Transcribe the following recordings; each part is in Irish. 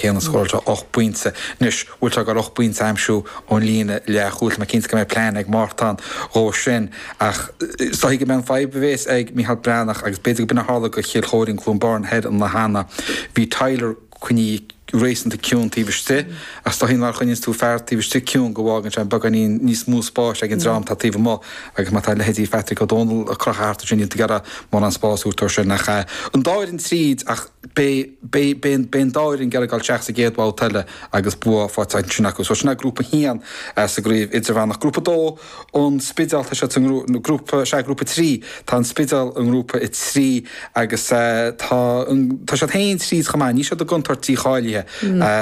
Shéan scóráil sé 8 bpointe. Anois bhfuil sé ag goil 8 bpointe a aimsiú ón líne leathchúil. Tá mé cinnte go mbeidh plean ag Mártan dhó sin. Ach is dóichí gurb é an fhadhb a bhéas ag Micheál Breathnach agus b'fhéidir go b'in a tharla do Chill Choirín, Cluain Bheirn thoir an lá cheana. Bhí Tyler cineál réasúnta ciúin taobh istigh ach is dóichí má choinníonn tú fear taobh istigh ciúin go bhfágann sé beagáinín níos mó spáis ag an dream atá taobh amuigh agus má tá leithéidí Phatrick Ó Dónaill crochtha thart ansin níl tú ag iarraidh mórán spás a thabhairt dó sin. Ach an dá fhoireann tríd ach. Beidh an dá fhoireann ag iarraidh dul isteach sa gcéad bhabhta eile agus bua faighte ansin acu. So sin é Grúpa 1 sa gCraobh Idirmheánach. Grúpa 2 ón Spidéal, tá siad sa ngrúpa, sea, Grúpa 3. Tá an Spidéal i nGrúpa 3 agus tá siad féin tríd chomh maith. Níl siad i gcontúirt dícháilithe.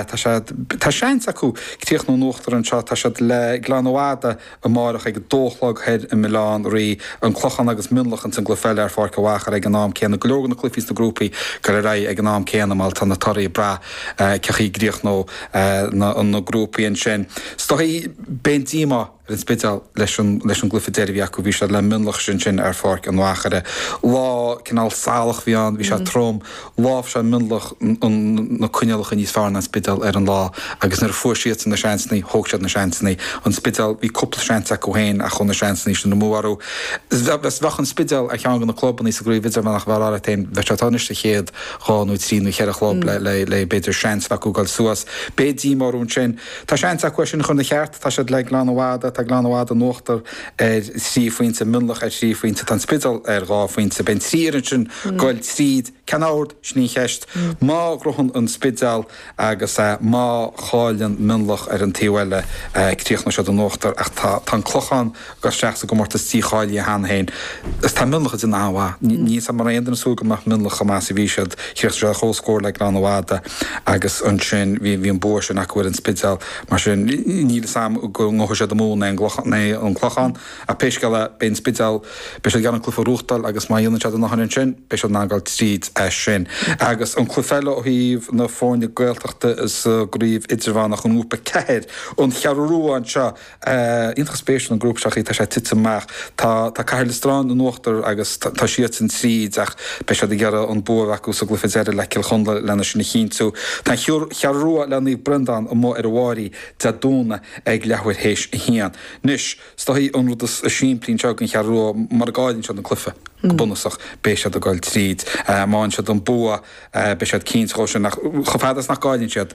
Tá seans acu críochnú in uachtar anseo. Tá siad le Gleann an Mhada amárach ag a dó a chlog thoir i mBaile Átha an Rí, An Clochán agus Mionlach ins an gcluiche eile ar Pháirc an Mhachaire ag an am céanna. Go leor de na cluichí sna grúpaí ag goil ar aghaidh ag an am céanna mar tá na torthaí ag brath cén chaoi a gcríochnóidh na grúpaí ansin. Is dóichí, beidh an-díomá ar an Spidéal leis an gcluiche deiridh a bhí acu. Bhí siad le Mionlach ansin ar Pháirc an Mhachaire. Lá cineál salach a bhí ann, bhí sé trom. Láimhseáil Mionlach na coinníollacha níos fearr ná an Spidéal ar an lá agus nuair a fuair siadsan na seansanna, thóg siad na seansanna. An Spidéal, bhí cúpla seans acu féin ach chuaigh na seansanna sin amú orthu. Bheadh an Spidéal ar cheann de na clubanna sa gCraobh Idirmheánach a mbeifeá ag rá leat féin. Bheadh siad anois sa chéad dhá nó trí nó cheithre chlub le, b'fhéidir, seans a bheith acu dul suas. Beidh díomá orthu ansin. Tá seans acu é sin a chur ina cheart. Tá siad le Gleann an Mhada, tá Gleann an Mhada in uachtar. ar thrí phointe, Mionlach ar thrí phointe, tá an Spidéal ar dhá phointe. Beidh an trí fhoireann sin ag goil tríd, cén ord, sin í an cheist. Má ghnóthaíonn an Spidéal agus má chailleann Mionlach ar an taobh eile críochnóidh siad in uachtar ach tá an Clochán ag goil isteach sa gcomórtas dícháilithe cheana féin. Is tá Mionlach ag déanamh an-mhaith. Níl a fhios agam an raibh aon duine ag súil go mbeadh Mionlach chomh maith is a bhí siad. Chríochnaigh siad comhscór le Gleann an Mhada agus ansin bhí an bua sin acu ar an Spidéal. Mar sin, níl fhios agam go ngnóthóidh siad an Mumhan né an Clochán, ach pé scéal é, beidh an Spidéal, beidh siad ag iarraidh an cluiche a ghnóchtáil agus má dhéanann siad an obair ansin, beidh siad in ann a ghoil tríd é sin. Agus an cluiche eile ó thaobh na foirne Gaeltachta sa gCraobh Idirmheánach i nGrúpa 4, An Cheathrú Rua anseo, iontach spéisiúil an grúpa seo, an chaoi atá sé tite amach. Tá Cathair Loistreáin in uachtar agus tá siadsan tríd ach beidh siad ag iarraidh an bua a bheith acu sa gcluiche deiridh le Cill Chonla lena sin a chinntiú. Tá an Cheathrú Rua le Naomh Breandán amuigh ar an bPrairie Dé Domhnaigh ag leathuair théis a haon. Anois, is dóichí an rud is simplí anseo don Cheathrú Rua mara gcailleann siad an cluiche, go bunúsach, beidh siad ag dul tríd. Má fhaigheann siad an bua beidh siad cinnte dhó sin ach chomh fada is nach gcailleann siad,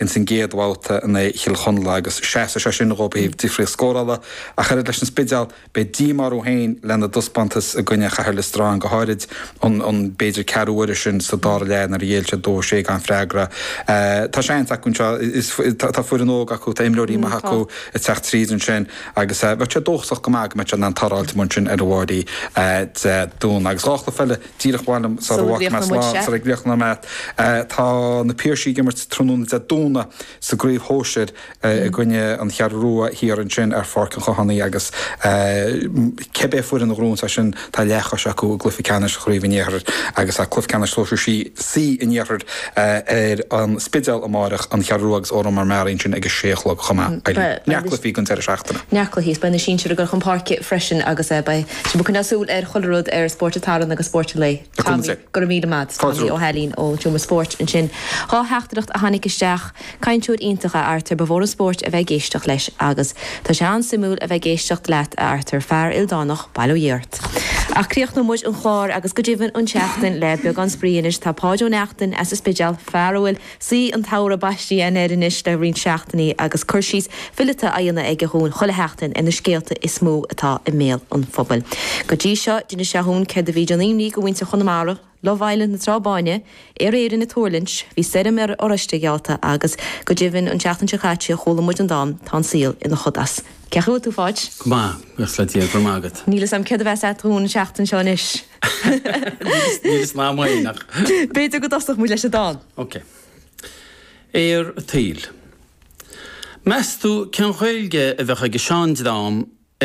ins an gcéad bhabhta in aghaidh Chill Chonla agus seasfaidh sé sin dhóib ó thaobh difríocht scórála ach oiread leis an Spidéal. Beidh díomá orthu féin lena dtaispeántas i gcoinne Chathair Liostráin go háirid, an b'fhéidir ceathrú uaire sin sa dara leath nuair a ghéill siad 2-6 gan freagra. Tá seans acu anseo, tá foireann óg acu, tá imreoirí maithe acu ag teacht tríd ansin agus bheifeá dóchasach go maith go mbeadh siad in ann tarraingt amach ansin ar an bpéire De Domhnaigh agus dhá chluiche eile. díreach mhaith liom a rá sula bhfágann muid slán anseo. ag leibhéal na mban tá na Piarsaigh ag imirt tráthnóna Dé Domhnaigh sa gcraobh shóisir i gcoinne an Cheathrú Rua thiar ansin ar Pháirc an Chathánaigh agus cibé foireann a ghnóthaíonns as sin tá leathchois acu i gcluiche ceannais chraobh an iarthair agus tá cluiche ceannais sóisir C an iarthair ar an Spidéal amáireach an Cheathrú Rua agus Órán Mór Meáraí ansin ag a sé a chlog chomh maith beidh neart cluichí ag an deireadh seachtaine. neart cluichí is beidh na sinsir ag goil chun páirce freisin agus beidh. Sibh ag coinneáil súil ar chuile rud ar Spórt an tSathairn agus Spórt an Lae. Tommy, go raibh míle maith agat. Tommy Ó hAilín ón tseomra spóirt ansin. Dhá theachtaireacht a tháinig isteach. Cainteoir iontach a Artair, ba mhór an spóirt a bheith ag éisteacht leis agus tá sé an-suimiúil a bheith ag éisteacht leat a Artair, fear ildánach, bail ó Dhia ort. Ach críochnóidh muid an clár agus go deimhin an tseachtain le beagán spraoi anois. Tá Páid Ó Neachtain as an Spidéal, fear a bhfuil Saoi an tsamhraidh baistithe air anois le roinnt seachtainí agus cur síos fileata á dhéanamh aige dhúinn chuile sheachtain ar na scéalta is mó atá i mbéal an phobail. Go dtí seo, d'inis sé dhúinn céard a bhí ag déanamh imní do mhuintir Chonamara, Love Island na Trá Báine, Aer Árann ag tuirlingt, bhí stoirm ar oráiste ag ealta agus, go deimhin, an seachtain seo caite chuala muid an dán Tá an saol ina chodas. Cén chaoi a bhfuil tú, Pháid? Go maith, buíochas le Dia, go raibh maith agat. Níl fhios a'm céard a bheas a'd dhúinn an seachtain seo anois. Níl fhios a'm fhéin ach. B'fhéidir go dtosódh muid leis an dán. Ok. Athrú an tsaoil. Meas tú cén Ghaeilge a bheadh ag an sean dream a